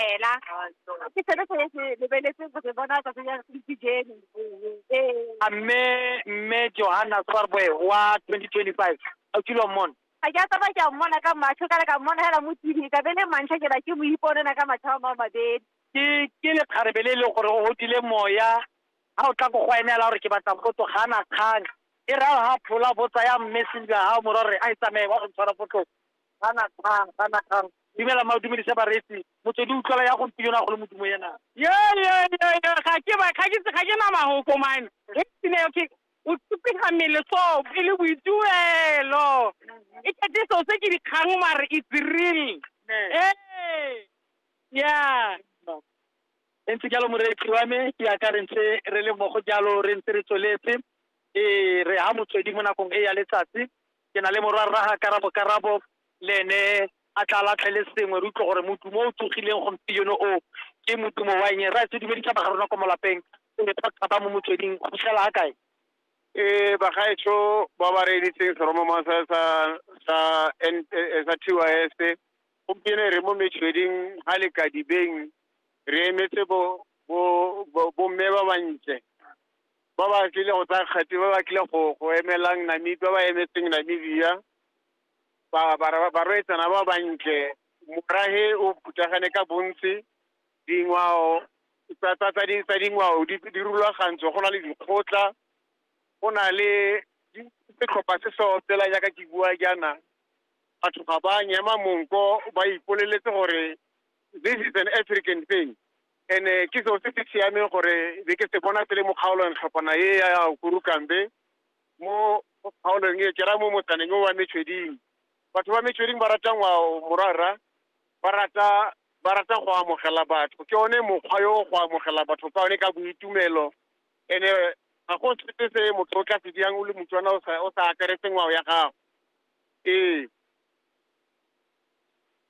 fela ke selo se se lebeletse go se bona tsatsi ya dijene ee a mme mme johanna swarboe wa 2025 a kilwa mmona ga ke a tsaba ke a mmona ka matlho ka le ka mmona fela mo tv ka be le mantlha ke ba ke mo iponela ka matlho a mao mabedi ke ke lekgarebe le e leng gore o godile moya ga o tla ko go ene la gore ke batla potso ga ana kgang e ra ga phola botsa ya mme sentle ga o mora gore a e tsamaye wa go tshwara potlong Kana kang, kana kang. Dumela mma, o dumedise bareetsi. Motswedi o utlwala ya gompieno, a go le modumo ena. Yo, yo, yo, yo, ga ke ba, ga ke, ga ke na mahoko man. Re tsine, okay, o tsupega mmele so, e le boituelo. E kete so se ke dikgang mare it's real. Ee, yeah. E ntse jalo moreetsi wa me, ke yaka re ntse re le mmogo jalo, re ntse re tsweletse. Ee, re ha motswedi mo nakong e ya letsatsi. ke na le morwa rraga karabo karabo le ene a tla latlhele sengwe re utlwe gore modumo o tsogileng gompieno o ke modumo wa eng ra se dumedisa ba ga rona ko molapeng o ne thata ba mo motsweding go fitlhela a kae e bagaetsho ba ba reeditseng seromoma sa sa sa N- eh, eh, sa tys gompieno re mo metsweding ga lekadibeng re emetse bo bo- bo- bomme ba bantle ba ba tlile go tsaya kgati ba ba tlile go go emelang namibia ba ba emetseng namibia ba- bara- ba- barwetsana ba bantle morage o phuthagane ka bontsi dingwao tsa tsa- tsa di- tsa dingwao di di rulagantswe go na le dikgotla go na le di- setlhopha se se opela jaaka ke bua jaana batho ga ba nyema monko ba ipoleletse gore this is an african thing ene ke seo se se siameng gore be ke se bona pele mo kgaolong tlhopana e ya kurukambe mo kgaolong e ke ra mo motsaneng o wa metshweding batho ba metshweding ba rata ngwao morara ba rata ba rata go amogela batho ke one mokgwa yo go amogela batho ka one ka boitumelo ene ga go sepe se motho o tla se diang o le motswana o sa o sa akaretse ngwao ya gago ee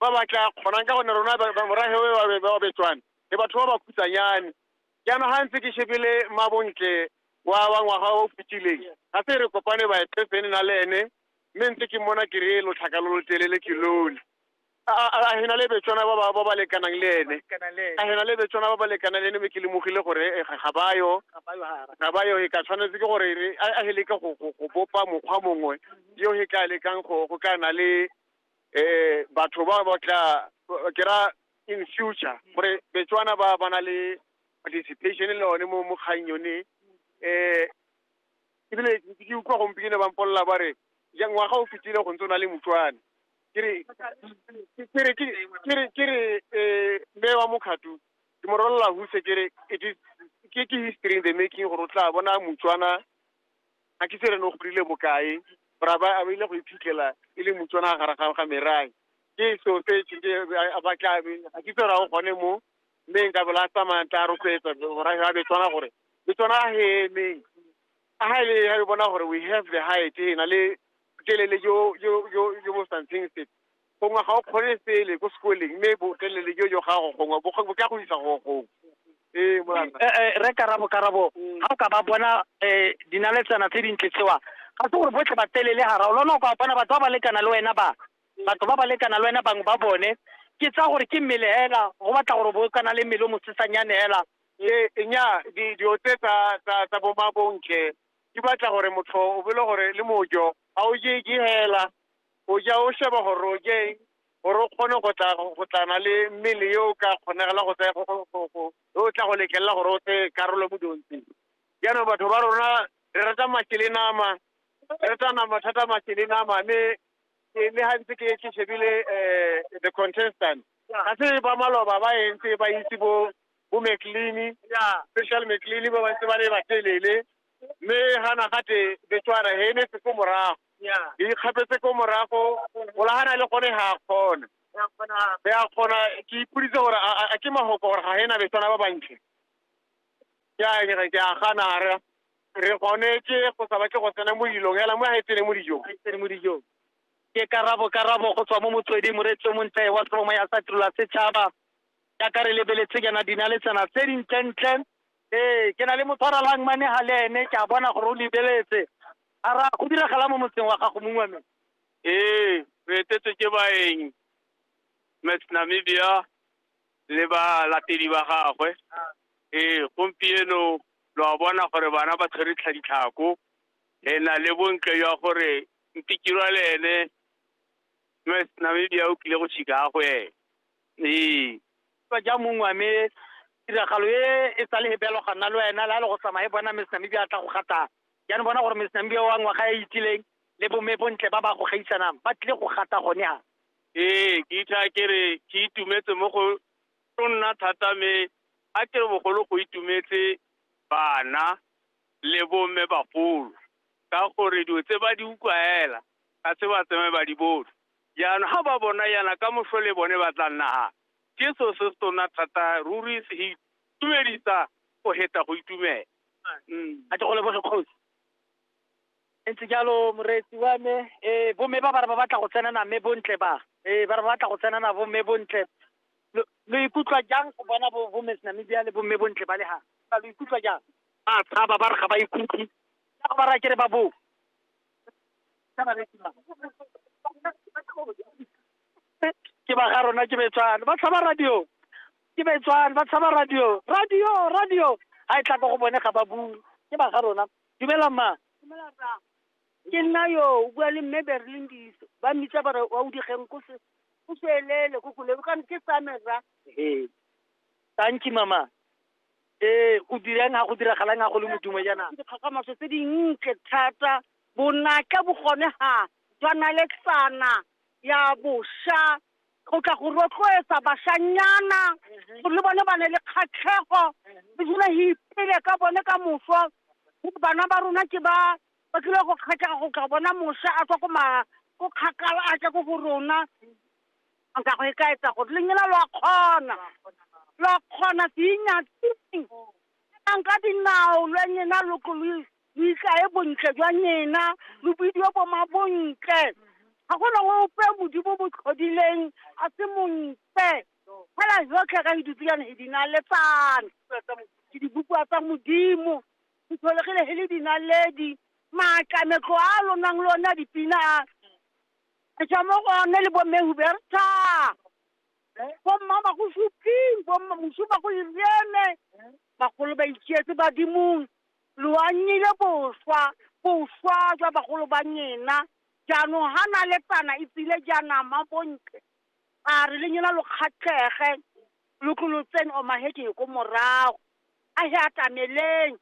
ba ba tla kgonang ka gonne rona morafe we ba betswane le batho ba ba khutsanyane jaanong ga ntse ke shebile mabontle wa wa ngwaga o fetileng ga se re kopane ba epesene na le ene mme ntse ke mona ke re lotlhaka lo lo telele ke lole a hena le betswana ba ba ba ba lekanang le ene a hena le betswana ba ba lekanang le ene mme ke lemogile gore eh, ga ga ba yo ga ba yo e ka tshwanetse ke gore re- a a he leke go go- go bopa mokgwa mongwe yo he ka lekang go go ka na le eh batho ba ba tla ke ra in future gore betswana ba ba na le participation le one mo mo kgang yone eh ebile ke utlwa gompieno ba mpolelela ba re ja ngwaga o fetile go ntse o na le motswane ke re ke re ke re ke re eh mme wa mokgatu ke mo rolela huse ke re it is ke ke history in the making gore o tla bona motswana ga ke tsere no godile bokae ra ba a ile go iphitlhela e le motswana gare ga ga merai ke so se ke a ba ka be ga ke tsere go gone mo mme nka bola tsamaya tla rotloetsa ra ga be tswana gore le tswana a heme a ha ile ya bona gore we have the height e na le telele jo jo jo jo bo something se gongwe ga o kgone sele ko sekoleng mme botelele jo jo gago gongwe bo ka go isa go gongwe ee molata eh, eh, re karabo karabo mm. ga o ka ba bona um dinaletsana tse dintle tsewa ga se gore botlhe batelele gara o lona o ka bona batho ba ba lekana le wena ba mm. batho ba ba lekana le wena bangwe ba bone ke tsa gore ke mmele hela go batla gore bo kana le mmele o mosesanyane hela e nya di di otse tsa tsa tsa bo mabonke di batla gore motho o bele gore le mojo a o je ke hela o ja o sheba gore o je eng gore o kgone go tla go tlana le mmele yo o ka kgonegela go tsaya o tla go letlelela gore o tseye karolo mo diontsheng jaanong batho ba rona re rata mašwi le nama re rata nama thata mašwi le nama mme le ga ntse ke ke shebile um the contestant ga se ba maloba ba entse ba itse bo bo mclean special mclean ba bantse ba le batelele mme ga nagate betswana he ne se ko morago Ke ikgapetse ko morago, Golagana le gone ga a kgona. Be a kgona, ke ipoditse gore a a- a ke mahoko gore ga ena besana ba bantle. Ke a ke re ke a gana a re re gone ke go sa batle go tsena mo dilong hela mo ga e tsene mo dijong. mo dijong ke karabo karabo go tswa mo motsweding moreetso montle wa seromo ya sa tirela setšhaba jaaka re lebeletse kana dinaletsana tse dintlentle ee ke na le motshwaralang mane ga le ene ke a bona gore o lebeletse A ra, Go diragala mo motseng wa gago mongwe wa me? Ee, re etetswe ke baeng, Miss Namibia le balatedi ba gagwe. Ee, gompieno lo a bona gore bana ba tshwere tlhaditlhako. Re na le bontle jwa gore Ntikirwa le ene Miss Namibia o tlile go Chicago ene. Ee, fa ja mongwe a me tiragalo e e sa le he belo ga nna le wena la le go tsamaye bona Miss Namibia a tla go gatang. Jaanong bona gore Miss Namibia wa ngwaga e itileng le bomme bontle ba ba go gaisanang ba tlile go gata gone ha. Ee, ke itha ke re ke itumetse mo go tlo nna thata me a ke re bogolo go itumetse bana le bomme bagolo ka gore dilo tse ba di utlwaela ga se ba tsamaye ba di bone. Jaanong ga ba bona jaana ka motlhole bone ba tla nna ga Jesu se setona thata ruri se itumedisa go heta go itumela. A ke go leboge kgosi. E ntse jalo moreetsi wa me. Ee, bomme ba ba re ba batla go tsena na mme bontle ba. Ee, ba re ba batla go tsena na bomme bontle. Lo lo ikutlwa jang go bona bo bo Miss Namibia le bomme bontle ba le ha? Ba lo ikutlwa jang? Ba tshaba ba re ga ba ikutlwe. Ka go ba raya ke re ba boo. ke ba ga rona ke betswana ba tshaba radio ke betswana ba tshaba radio radio radio ga e tla ko go bone ga ba bue ke ba ga rona dumela mma ke nna yo o bua le mme berlin diso ba mmitsa bare wa o digeng ko se o swelele ko kolebe kana ke samera ee tanki mama ee go dirang ga go diragalang ga go le modumo jaana dikgakgamatso tse dintle thata bonatla bo gone ga jwa naletsana ya bosha go tla go rotloetsa bashanyana gore le bone ba ne le kgatlhego re dula re ipele ka bone ka moso bana ba rona ke ba ba tlile go kgatlhega go tla bona mosha a tswa ko ma ko kgakala a tla ko go rona Nka go e ka etsa gore le nyela lo a kgona. Lo a kgona se inyatsing. Tlang ka dinao lo nyena lo tlo lo lo itlae bontle jwa nyena, lo bidiwe bo ma bontle. Ga go nang ope modimo bo tlhodileng a se montle. Fela jotlhe ka hidutsilane he dinaletsana. Ke dibopiwa tsa modimo. Ke tlholegile he le dinaledi. Maatla metlo a lo nang le one a dipina a. Re tswa mo go one le bomme Huberta, bomma ba go suping, bomma mosu ba go iriene, bagolo ba itsietse badimong, lo anyile boswa, boswa jwa bagolo ba nyena, jaanong ha na le tana e tsile jaanama bontle, a re le nyena lo kgatlhege, lo tlo lo tsene o maheding ko morago, a he atameleng,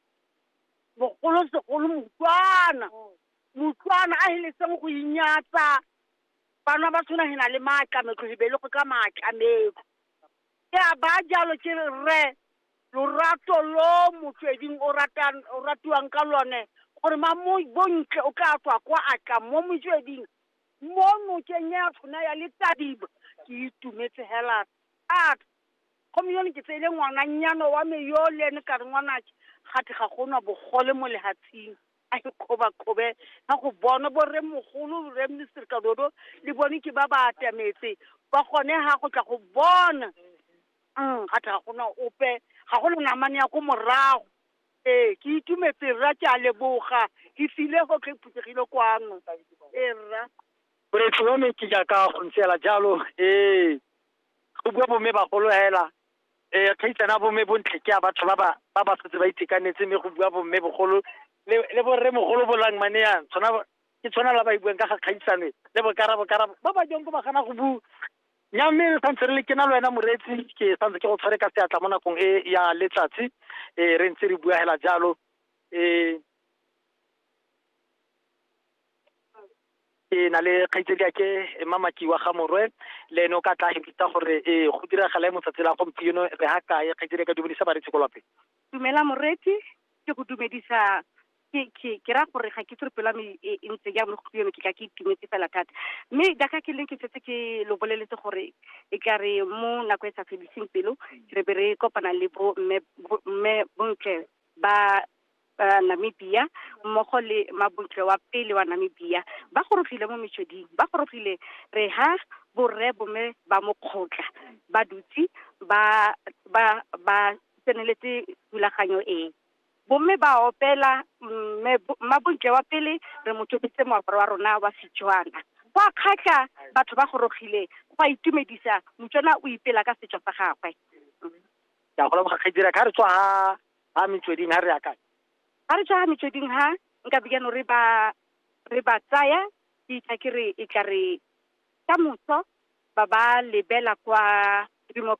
bogolosegolo Motswana. Mutloana a heletseng go inyatsa, banwa ba tshwana hena le maatlametlo hebelego ka maatlametlo. Ke a baa jalo ke re, Rre, lorato lo Motsweding o ratang, o ratiwang ka lone, gore ma mo bontle o tlaa tswa kwa a tla mo Motsweding, mo nokeng ya tshona ya letadiba. Ke itumetse hela thata. Gomme yone ke tseile ngwananyana wa me yole, ne ka re, Ngwanake, gate ga go na bogole mo lehatsheng. a ke kgobakgobe ga go bonwe borremogolo rre minister kadodo le bone ke ba ba atametse ba gone ga go tla go bona mm ga tla go na ope ga go le namane ya ko morago ee ke itumetse rra ke a leboga ke file go tlhe phuthegile kwano ee rra boretsi wa me ke jaaka go ntseela jalo ee go bua bomme bagolo hela eh kgaitsana bo mme bontle ke a batho ba ba ba ba setse ba itekanetse mme go bua bo mme bogolo le le bo rre mogolo bolang mane yang tshwana ba- ke tshwana la ba e buang ka ga kgaitsane le bokara bokara ba ba jang ko ba gana go bu nya mme re santse re le ke na le wena moreetsi ke santse ke go tshware ka seatla mo nakong e ya letsatsi eh re ntse re bua hela jalo eh ke na le kgaitsedi ake mamaki wa ga morwe le ene o ka tla hepita gore ee go diragala mo tsatsi la gompieno re ha kae kgaitsedi ka dumedisa baretsi ko lapeng dumela moretsi ke go dumedisa ke ra gore ga ke tsere pela me e, e ntse ya mo gompieno ke ka ke itumetse fela thata mme jaaka ke leng ke setse ke lo boleletse gore e ka re mo nako e sa fediseng pelo re be re kopana le bo mme bontle ba uh, Namibia mmogo le mabutle wa pele wa Namibia ba gorogile mo metsweding ba gorogile re ha borre bome ba mokgotla ba dutse ba ba ba tseneletse thulaganyo e bomme ba opela mmabontle wa pele re mo tobetse moaparo wa rona wa setswana go a kgatlha batho ba gorogile go a itumedisa motswana o ipela ka setso sa gagwe ke a go leboga kgedira ka re tswa Ha metsweding ha re ya kae? Ha re tswa ha metsweding ha nka bigano re ba re ba tsaya ke itla ke re e tla re ka moso ba ba lebela kwa rimo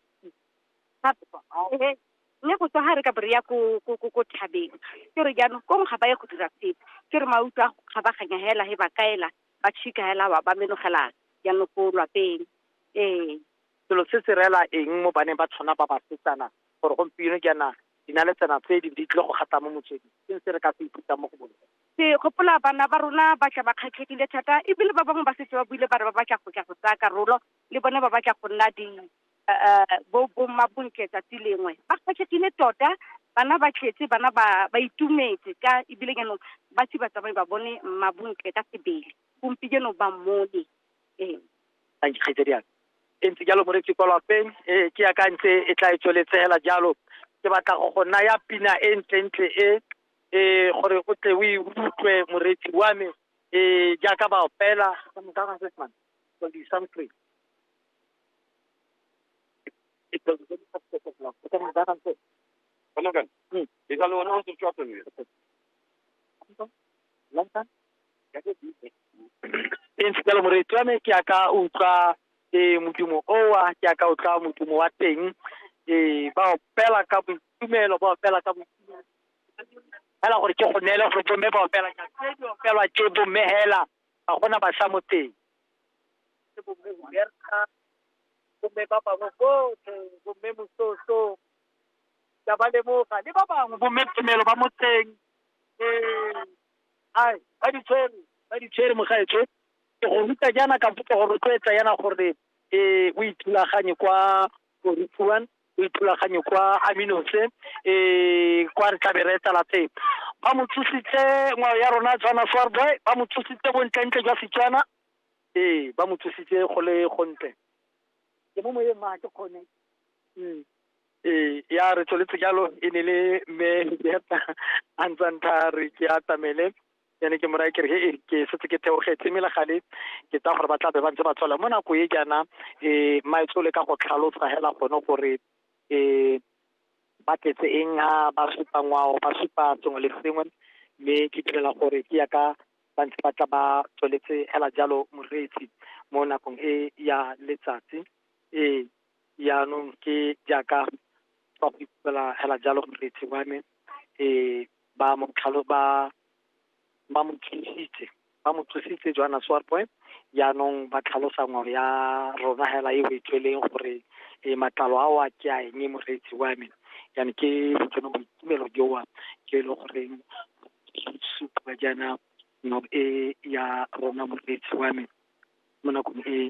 mme go tswa ha re ka bo re ya ko ko ko ko thabeng ke re jaanong kong ga ba ye go dira sepe ke re mauto a ga ba ganya hela he ba kaela ba tšhika hela ba ba menogela jaanong ko lwapeng ee Selo se se reela eng mo baneng ba tshwana ba basetsana gore gompieno jaana dinaletsana tse di di tlile go gata mo motsweding? Ke eng se re ka se ithutang mo go bone? Ke gopola bana ba rona ba tla ba kgatlhegile thata e bile ba bangwe ba setse ba buile ba re ba batla go tla go tsaya karolo, le bone ba batla go nna di bo bommabontle tsatsi lengwe. Ba kgatlhegile tota, bana ba tletse, bana ba ba itumetse ka e bile jaanong ba se batsamai ba bone mmabontle ka sebele, gompieno ba mmone. a dikgaitsadi aka e ntse jalo moreetsi kwa lapeng e ke akantse e tla e tsweletse hela jalo ke batla go go naya pina e ntlentle e e gore o tle o e utlwe moreetsi wa me e jaaka ba opela Insipela moreetsi wa me ke a ka utlwa eh, modumo owa ke a ka utlwa modumo wa teng eh, ba opela ka boitumelo ba opela ka boitumelo fela gore ke go neele gore bomme ba opela jang. Tse di opelwa ke bomme hela ga gona basha mo teng Ke bomme Huberta, bomme ba bangwe botlhe bomme mososo ka ba lemoga le ba bangwe bomme tumelo ba motseng eh, Ai, ba di tshwere, ba di tshwere mogaetsho. Ke go ruta jaana ka go go rotloetsa yana gore eh o ithulaganye kwa Borufuan, o ithulaganye kwa Aminose, eh kwa re tlabe re etela teng. Ba mo tsositse ngwao ya rona Tswana Soar Boy, ba mo tsositse bontlentle jwa Setswana. Ee, ba mo tsositse go le gontle. Ke mo moyeng mma, ga ke kgone. Ee, ya re tsweletse jalo e ne le mme Hiliata a ntsa ntha re ke atamele ene ke moraya kere he ke setse ke theogetse mme legale ke tsa gore ba tla be ba ntse ba tswela mo nako e jaana um maetso le ka go tlhalosa hela gone gore um ba tletse eng ha ba supa ngwao ba supa sengwe le sengwe mme ke direla gore ke ya ka ba ntse ba tla ba tsweletse hela jalo moreetsi mo nakong e ya letsatsi ee yaanong ke jaaka ba go ipela hela jalo moreetsi wa me um ba mo tlhalo ba ba mo thusitse ba mo thusitse joana swarpoe yaanong ba tlhalosa ngwao ya rona hela e o e tsweleng gore um matlalo ao a ke a eng moreetsi wa me yane ke botseno boitumelo joa ke e le goreng supa jaana ngwao e ya rona moreetsi wa me mo nakong e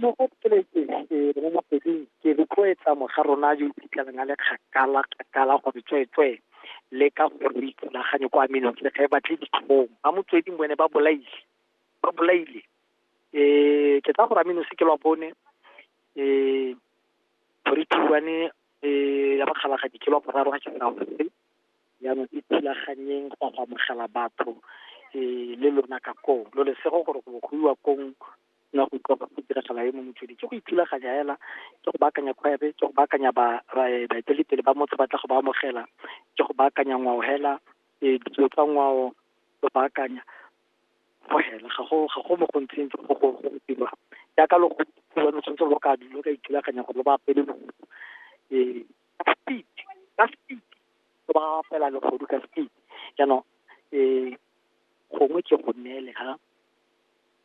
mo go tsweletse mo motsweding ke rotloetsa moga rona yo iphitlhelang a le kgakala kgakala gore tsweetswee le ka gore o ikgolaganye kwa menong le ga e batle ditlhong ba motsweding bone ba bolaile ba bolaile um ke tsa gore ameno se ke lwa bone um three two one um ya bakgalagadi ke lwa boraro ga ke sa gore jaanong e thulaganyeng go go amogela batho um le lona ka koo lo lesego gore go go iwa kong nna go utlwa go diragala e mo motswedi ke go ithulaganya hela ke go baakanya kgwebe ke go baakanya baeteledipele ba motho ba tla go ba amogela ke go baakanya ngwao hela um ditso tsa ngwao go baakanya go hela ga go ga go mo go ntseng go go go dirwa jaaka lo go lo tshwanetse lo ka lo ka ithulaganya gore lo ba apele lo um ka speed ka speed lo ba fela legodu ka speed jaanong um gongwe ke go neele ha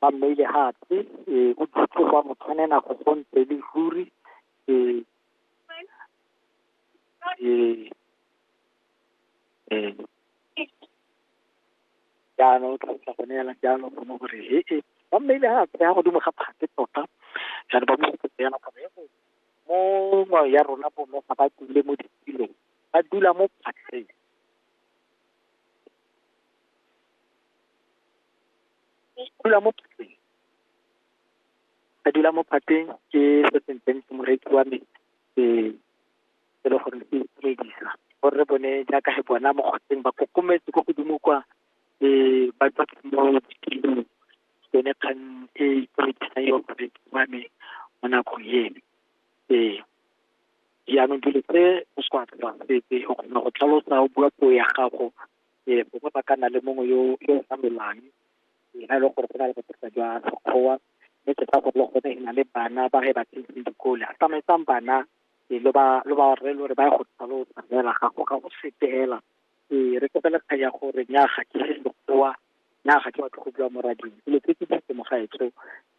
ba mmaile gape um o dutse kwa motshwanena go gontse le ruri um um um jaanong o tlhalosa gone yana jalo gone gore he e ba mmaile gape ya godimo ga phate tota jaanong ba mosetse yana gore he mo ngwao ya rona bono ga ba dule mo ditulong ba dula mo phatleng dula mo phatleng a dula mo phatleng ke se se ntseng ke moreki wa me ke e le gore ke itumedisa gore re bone jaaka he bona mo kgotseng ba kokometse ko godimo kwa um ba tswa mo dikilong yone kgang e itumedisang yo moreki wa me mo nakong eno ee jaanong dilo tse o se go apela sepe o kgona go tlhalosa o bua puo ya gago um gongwe ba ka nna le mongwe yo yo sa lwelang ga e leng gore go na le bothata jwa sekgowa mme ke sa gore le gone e na le bana ba ge ba tsentse dikole a tsamaisang bana um lo ba lo ba rre le gore ba ye go tlhalosa fela ga go ga go sepe fela um re kopele kgang ya gore nya ga ke se sekgowa nya ga ke batle go bua mo rading dilo tse ke di temogaetso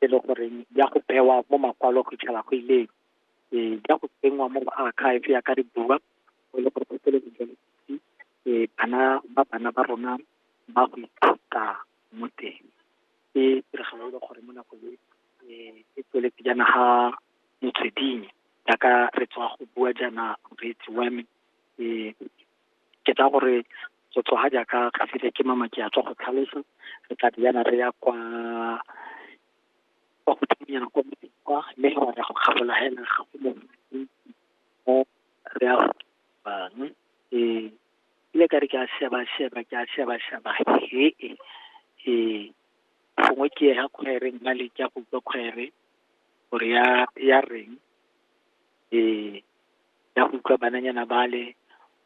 e le goreng ya go bewa mo makwalo go itšhela go ileng um ya go tsenngwa mo archive ya ka re bua o le gore go tsele e bana ba bana ba rona ba go ithuta mo teng ke tiragalo e le gore mo nako e e tsweletse jaana ga motsweding jaaka re tswa go bua jaana reetsi wa me um ke tsa gore go tswa ga jaaka ga file ke mama ke a tswa go tlhalosa re tla di yana re ya kwa kwa godimonyana kwa motseng kwa mme re ya go kgabolola hela ga go mo re ya go bangwe ee ile ka re ke a sheba sheba ke a sheba sheba he e ee gongwe ke ya khwaere nna le ke a go utlwa khwaere gore ya ya reng ee ya go utlwa bananyana bale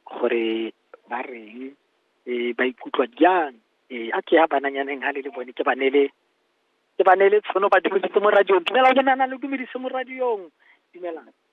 gore ba reng ee ba ikutlwa jang ee a ke ya bananyaneng ha le le bone ke ba nele ke ba nele tshono ba dumedise mo radiong dumela ke nana le dumedise mo radiong dumelang